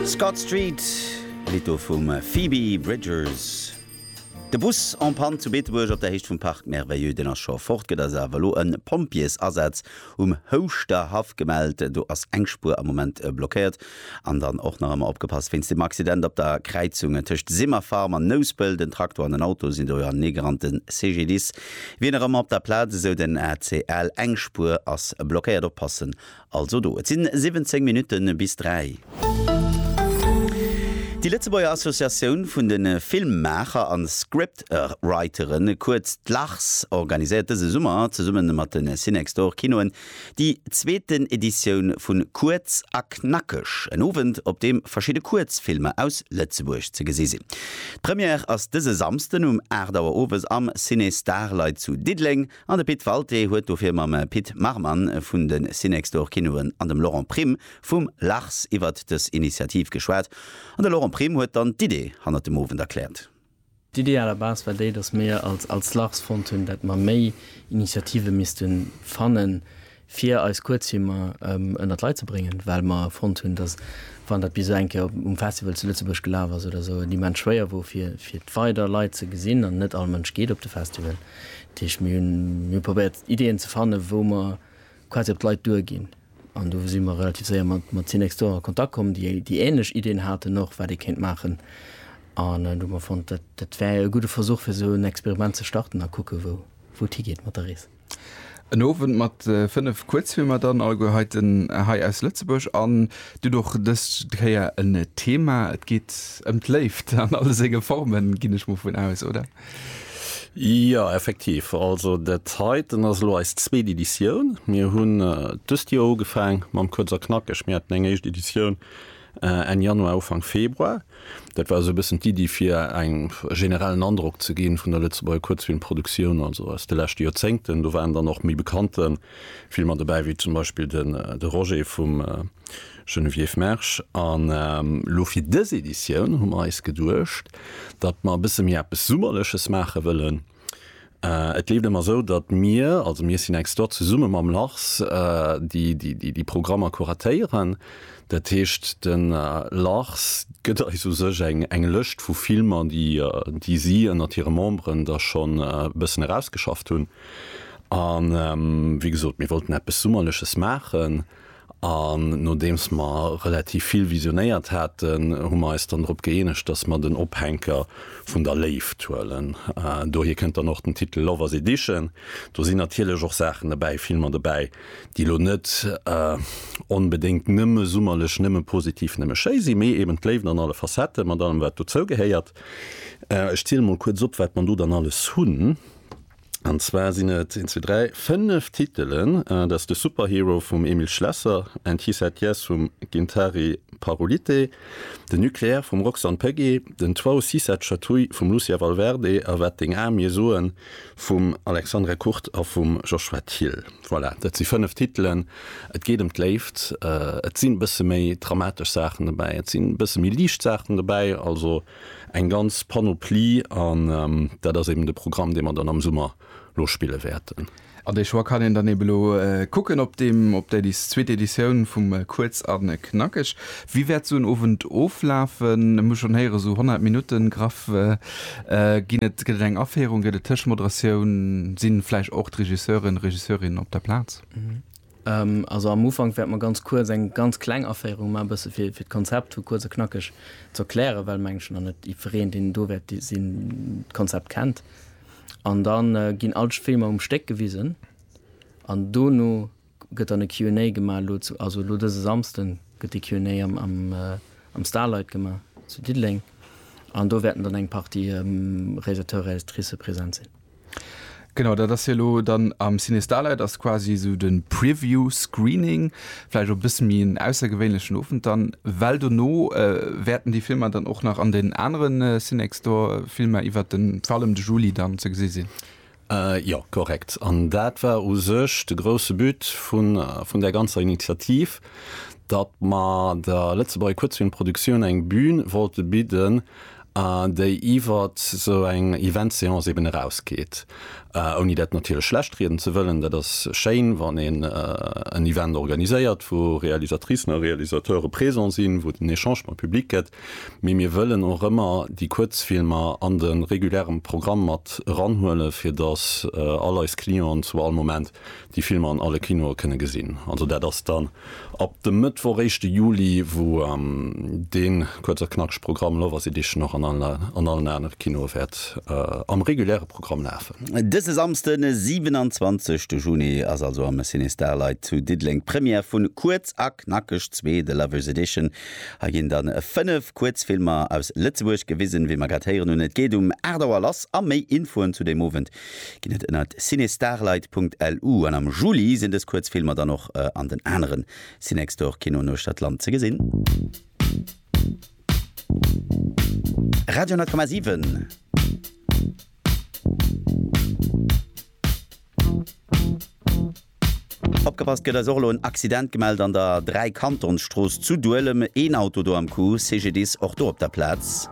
Scott Street, Lidd do vum Phoebe Bridgers. De Bus en Panne zu Beetebuerg op der Héicht vum Parc Merveilleux, deen ass scho fort. Gëtt ass awer elo e Pompjeesasaz um Houschterhaff gemellt. Do ass eng Spuer am Moment blockéiert. An dann och nach ëmmer opgepasst wéinst dem Accident op der Kräizung tëscht Simmerfarm an Nouspelt. En Traktor an en Auto sinn do jo aneegerannt. De CGDIS wier nach ëmmer op der Plaz, esou den ACL. Eng Spuer ass blockéiert. Oppassen Also do, et sinn 17 Minutten bis 3. Déi Lëtzebuerger Associatioun vun de Filmmaacher an Scriptwriteren, kuerz d'LARS, organiséiert dëse Summer zesummen mat den Cinextor Kinoen déi zweeten Editioun vun Kuerz a Knackeg, en Owend op deem verschidde Kuerzfilmer aus Lëtzebuerg ze gesi sinn. D'Première ass dëse Samsden um 8 Auer Owes am Ciné Starlight zu Diddeleng. An de Pit Walté huet dofir mam Pit Marman vun de Cinextor Kinoen an dem Laurent Prim vum Lars iwwert dës Initiativ geschwat. An de Laurent Prim huet dann d'Idee hannert dem Owend erkläert. D'Idee à la base war déi, datt mir als Lars fonnt hunn, dat mer méi Initiative misste fannen, fir eis Kuerzfilmer ënnert d'Leit ze bréngen, well mer fonnt hunn, dass, wann dat bis elo eng Kéier um Festival zu Lëtzebuerg gelaf ass oder esou, et immens schwéier wor, fir fir weider Leit ze gesinn. An net all Mënsch geet op de Festival. Dat heescht, mir hunn mir probéiert, Ideeën ze fannen, wou mer quasi op d'Leit duerginn. An do si mer relativ séier mat mat Cinext d'Or a Kontakt komm, déi déi änlech Ideeën haten och, wat ee kéint maachen. An do hu mer fonnt, dat dat wär e gudde Versuch, fir esou en Experiment ze starten a kucke wou wou et higeet mat der Rees. En Owend mat 5 Kuerzfilmer dann alleguer heiten hei aus Lëtzebuerg an dunn och dës Kéier en Thema. Et geet ëm d'Léift an alle senge Formen, ginn ech mol vun aus, oder? Jo, effektiv. Also dat heiten ass elo eis zweet Editioun. Mir hunn dëst Joer ugefaang mam Kuerz a Knackeg. Mir haten eng éischt Editioun Enn Januar, Ufank Februar. Dat war esou e bëssen d'Iddi fir eng generellen Androck ze ginn vun der Lëtzebuerger Kuerzfilmproduktioun, also aus de leschte Joerzéngten. Do waren dann och méi bekannte Filmer dobäi, wéi zum Beispill de De Roger vum Geneviève Mersch. An elo fir dës Editioun hu mer eis geduecht, datt mer e bësse méi eppes Summerleches maache wëllen. Et leeft ëmmer esou, datt mir, also mir Synextor, zesumme mam Lars déi Programmer kuratéieren. Dat heescht de Lars gëtt eis u sech eng Lëscht vu Filmer, déi si ënnert hire Memberen da schonn e bëssen erausgeschafft hunn. A wéi gesot, mir wollten eppes Summerleches maachen. An nodeems mer relativ vill visionéiert haten, hu mer eis dann drop gëeenegt, dass mer den Ophänker vun der Léift huelen. Dohier kënnt dann och den Titel Lovers Edition. Do sinn natierlech och Saachen dobäi, Filmer dobäi, déi elo net onbedéngt nëmme summerlech, nëmme positiv, nëmme schéi sinn, mee eben d'Léift an alle Facetten, mat allem wat dozou gehéiert. Ech zielen emol kuerz op, wat mer do dann alles hunn. An zwar sinn et, een, zwee, dräi, fënnef Titelen. Dat ass de Superhero vum Emil Schlesser, And He Said Yes vum Gintari Parolite, de Nucléaire vum Roxanne Pegge, den Toit si cette chatouille vum Lucia Valverde a Wat deng Ae mir soen vum Alexandre Kurt a vum Joshua Thill. Voilà, dat si fënnef Titelen. Et geet ëm d'Léift, et sinn e bësse méi dramatesch Saachen dobäi, et sinn e bësse méi liicht Saachen dobäi. Also. Eng ganz Panoplie an dat ass eben de Programm, dee mer dann am Summer lo spille wäerten. An dee Choix kann een dann eben elo kucken op deem, op där zweet Editioun vum Kuerz a Knackeg. Wéi wäert esou en Owend oflafen? Ech hu schonn héieren, esou 100 Minutten graff ginn et. Gëtt et eng Aféierung, gëtt et Tëschmoderatioun? Si vläicht och d'Regisseuren, Regisseurinnen op der Plaz? Also am Ufank wäerte mer ganz kuerz eng ganz kleng Aféierung maachen, e bësse fir d'Konzept hu kuerz a knackeg ze erklären, well mengen ech nach net jiddwereen, deen do wäert sinn, d'Konzept kennt. An da ginn all d'Filmer um Stéck gewisen an dono gëtt dann e Q and A gemaach. Elo, also elo dëse Samsden gëtt de Q and A am Starlight gemaach zu Diddeleng an do wäerten dann eng Partie Réalisateur, Réalisatricë present sinn. Genau, dat ass hie lo dann am CineStarlight, ass quasi esou de Preview Screening, vläicht och e bësse méi en aussergewéinlechen Owend dann, well dono wäerten déi Filmer dann och nach an den anere CiNextDoor Filmer iwwert de vor allem de Juli dann ze gesi sinn. Jo, korrekt. An dat war u sech de grousse But vun där ganzer Initiativ, datt mer der Lëtzebuerger Kuerzfilmproduktioun eng Bühn wollte bidden, a déi iwwert esou eng Eventseance eben erausgeet, ouni dat natierlech schlechtrieden ze wëllen. Dat ass schéin, wann een en Event organiséiert, wou Realisatricen a Realisateure présent sinn, wou et en Echange mam Public gëtt, mee mir wëllen och ëmmer déi Kuerzfilmer an de reguläre Programm mat eranhuelen, fir datt all eis Clienten zu all Moment déi Filmer an alle Kinoe kënne gesinn. Also dat ass dann ab dem Mëttwoch, éischte Juli, wou dee kuerz a knackeg Programm Love Us Edition och an allen anere Kinoe wäert am reguläre Programm lafen. Dëse Samsden, de 27 de Juni, ass also am Ciné Starlight zu Diddeleng d'Première vu Kuerz a knackeg 2, The Lovers Edition. Hei ginn da 5 Kuerzfilmer aus Lëtzebuerg gewisen, wéi mer grad héieren hunn. Et geet um 8 Auer lass a méi Infoen zu deem Owend Ginn et ënnert cinestarlight.lu an am Juli sinn dës Kuerzfilmer dann och an den anere Cinextor Kinoen uechtert d'Land ze gesinn. Radio 100,7. Opgepasst gëtt eis och elo en Accident gemellt an der Dräikantonsstrooss zu Duelem. Een Auto do am Coup. CGDIS och do op der Plaz.